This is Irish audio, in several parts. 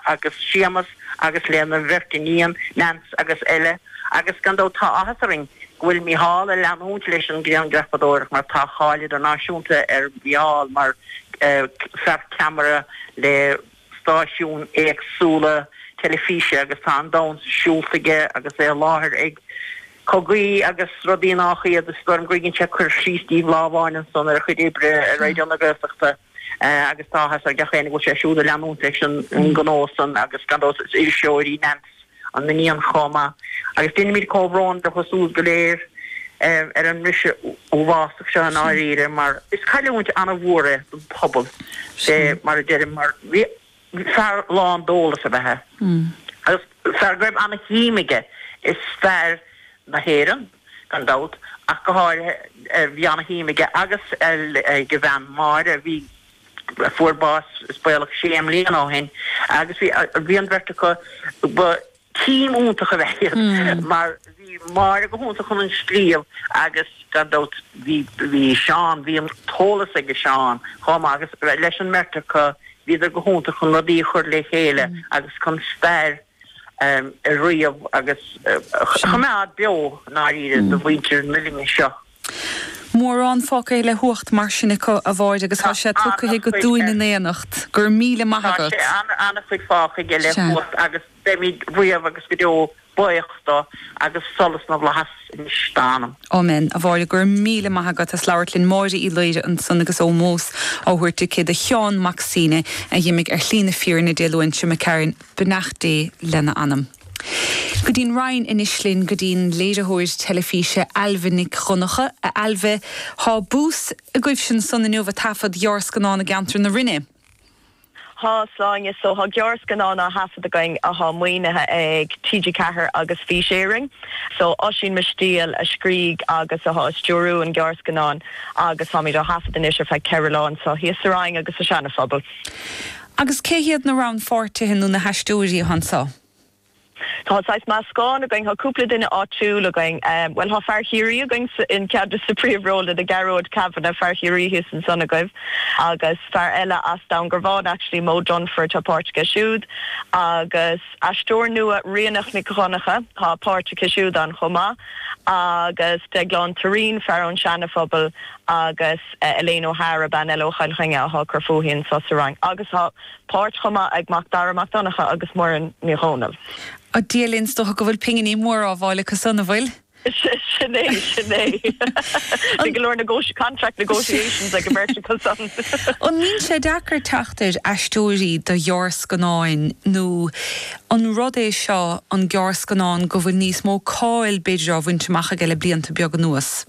agus Séamus agus lena bheirt iníon, Neans agus Ella, agus gan dabht tá áthas orainn go bhfuil Mícheál ag leanúint leis an grianghrafadóireacht mar tá cáil idirnáisiúnta ar Mhícheál mar fear ceamara le stáisiúin éagsúla teilifíse agus tá an domhan siúlta aige agus é i láthair ag cogaí agus rudaí nách iad, is dóigh liom go dtugann sé cur síos díbh lá amháin ansan ar a chuid oibre ar Raidió na Gaeltachta. agus tá áthas ar gach éinne go bhfuil sé siúd ag leanúint leis an ngnó san agus gan dabht is iriseoir í Neans, an iníon, chomh maith agus déanaimid comhbhrón leo siúd go léir ar an mbriseadh uafásach seo i ndáiríre mar is cailliúint an-mhór é don phobal mar a deirim mar fear lán d'eolas ab ea é agus fear go raibh ana-shuim aige i stair na hÉireann gan dabht ach go háirithe. Bhí ana-shuim aige agus ag a bhean Máire a bhí, a fuair bás is baolach sé mbliana ó shin agus bhí an bheirt acu, ba. Team iontach ab ea iad mar bhí Máire go hiontach chun an scríobh agus gan dabht bhí bhí Seán, bhí an t-eolas aige Seán chomh maith agus leis an mbeirt acu bhíodar go hiontach chun rudaí a chur le chéile agus chun stair a ríomh agus a choimeád beo, i ndáiríre, do mhuintir na linne seo. Mórán fágtha le huacht mar sin acu, a Mháire, agus tá sé tugtha agat dúinn in éineacht. Go raibh míle maith agat. Tá an-chuid fágtha aige le huacht agus beimid riamh agus go deo baoch do agus solas na bhFlaitheas anois dá anam. Amen, a Mháire. Go raibh míle maith agat as labhairt linn. Máire Uí Laoire ansan agus ómós á thabhairt aici do Sheán Mac Suibhne a dh'imigh ar shlí na fírinne Dé Luain seo imigh tharainn. beannacht Dé lena anam. Go dtí'n Rinn anois linn go dtí'n léiritheoir teilifíse Ailbhe Nic Dhonnacha, A Ailbhe, thá bús agaibhsean san inniu ag taifead gearrscannán i gceantar na Rinne. Thá Sláine so, thá gearrscannán á thaifead againn athá maoinithe ag TG Ceathair agus Fís Éireann so. Oisín Mistéil a scrígh agus athá ag stiúrú an gearrscannán agus táimid á thaifead anois ar feadh ceithre lá anso thíos sa Rinn agus sa Seana-Phobal. Agus cé hiad na rannpháirtithe nó na haisteoirí atá ann? So tá saghas meascán againn, tá cúpla duine áitiúil againn, bhuel tá fear Chiarraí againn i gceann des na príomhrólanna, Gearóid Kavanagh, fear Chiarraí thíos ansan agaibh agus fear eile as Dún Garbhán actually, Moe Dunford, tá páirt aige siúd agus aisteoir nua, Ríonach Nic Dhonncha, tá páirt aici siúd ann chomh maith agus Deaglán Turraoin, fear ón Seana-Phobal agus Elaine O'Hara, bean eile ó Chill Chainnigh, athá ag cur fúithi anseo sa Fhrainc, agus tá páirt chomh maith ag Mac Dara Mac Donncha agus Muireann Ní Dhomhnaill. Ó, Dia linn, is dócha go bhfuil pinginí móra á bhfáil acu san, an bhfuil? Sin é, sin é. Bhí go leor negoti, contract negotiations ag an bheirt acu san. An mbíonn sé deacair teacht ar aisteoirí do ghearrscannáin nó an rud é seo an gearrscannán go bhfuil níos mó cáil b'fhéidir á bhaint amach aige le blianta beaga anuas?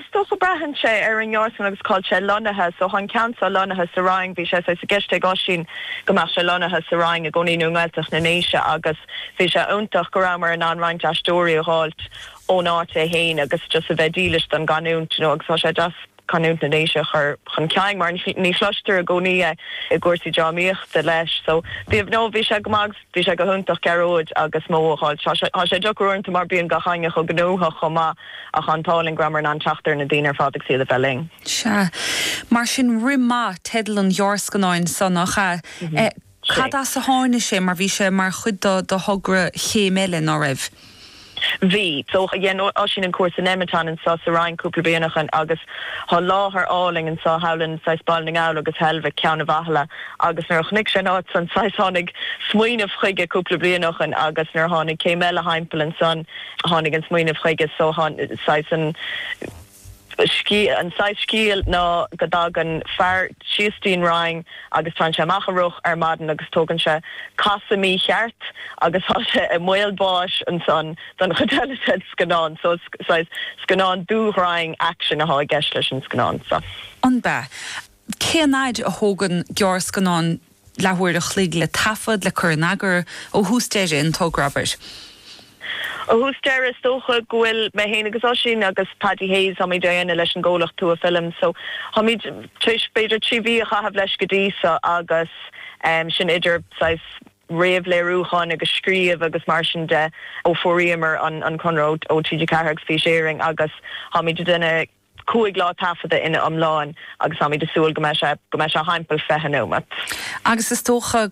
Is dócha, braitheann sé ar an ngearrscannán agus cá'il sé lonnaithe. So thá an ceann so lonnaithe sa Rinn, bhí sé saghas i gceist ag Oisín go mbeadh sé lonnaithe sa Rinn i gcónaí nó i nGaeltacht na nDéise agus bhí sé iontach go rabhmar in ann roinnt aisteoirí a dh'fháilt ón áit é fhéin agus just a bheith dílis don gcanúint you know agus thá sé deas canúint na nDéise a chur chun cinn mar ní chloistear i gcónaí é i gcúrsaí drámaíochta leis. So bhí no bhí sé go maith, bhí sé go hiontach Gearóid agus Moe a dh'fháilt. Tá sé tá sé deacair uaireanta mar bíonn gach éinne chomh gnóthach chomh maith ach thá an t-ádh linn go rabhamar in ann teacht ar na daoine ar fad agus iad a bheith linn. Sea. Mar sin rith maith teideal an ghearrscannáin so, nach ea? sé. Cad as a tháinig sé? Mar bhí sé mar chuid de thogra Chéim Eile, ná raibh? Bhí. So, dhein Oisín an cúrsa Nemeton anseo sa Rinn cúpla bliain ó shin agus thá láthair álainn anseo, howlin, saghas Baile na nGall agus Heilbhic, Ceann a' Bhathala agus nuair a chonaic sé an áit san, saghas tháinig smaoineamh chuige cúpla bliain ó shin agus nuair a tháinig Céim Eile thimpeall ansan, tháinig an smaoineamh chuige. So, thá, saghas an. scéal, an saghas scéal ná go dtagann fear síos dtí'n Rinn agus téann sé amach ag rith ar maidin agus tógann sé casadh mícheart agus tá sé i mbaol báis ansan don chuid eile den scannán so is saghas scannán dúghrainn, action athá i gceist leis an scannán so. An b'ea? Cén fhaid a thógann gearrscannán leathuair a chloig le taifead, le cur in eagar, ó thús deireadh an togra, abair. Ó thús deireadh, is dócha go bhfuil mé féin agus Oisín agus Paddy Hayes, táimid á dhéanamh leis an gcomhlacht Tua Films, so táimid tar éis b'fhéidir trí mhí a chaitheamh leis go dtí so agus sin idir saghas réamhléiriúchán agus scríobh agus mar sin de ó fuaraíomar an conradh ó TG4 agus Fís Éireann agus táimid ag déanamh cúig lá taifeadta ina iomláine agus táimid ag súil go mbeidh sé thimpeall 20 neomat. agus is dócha go.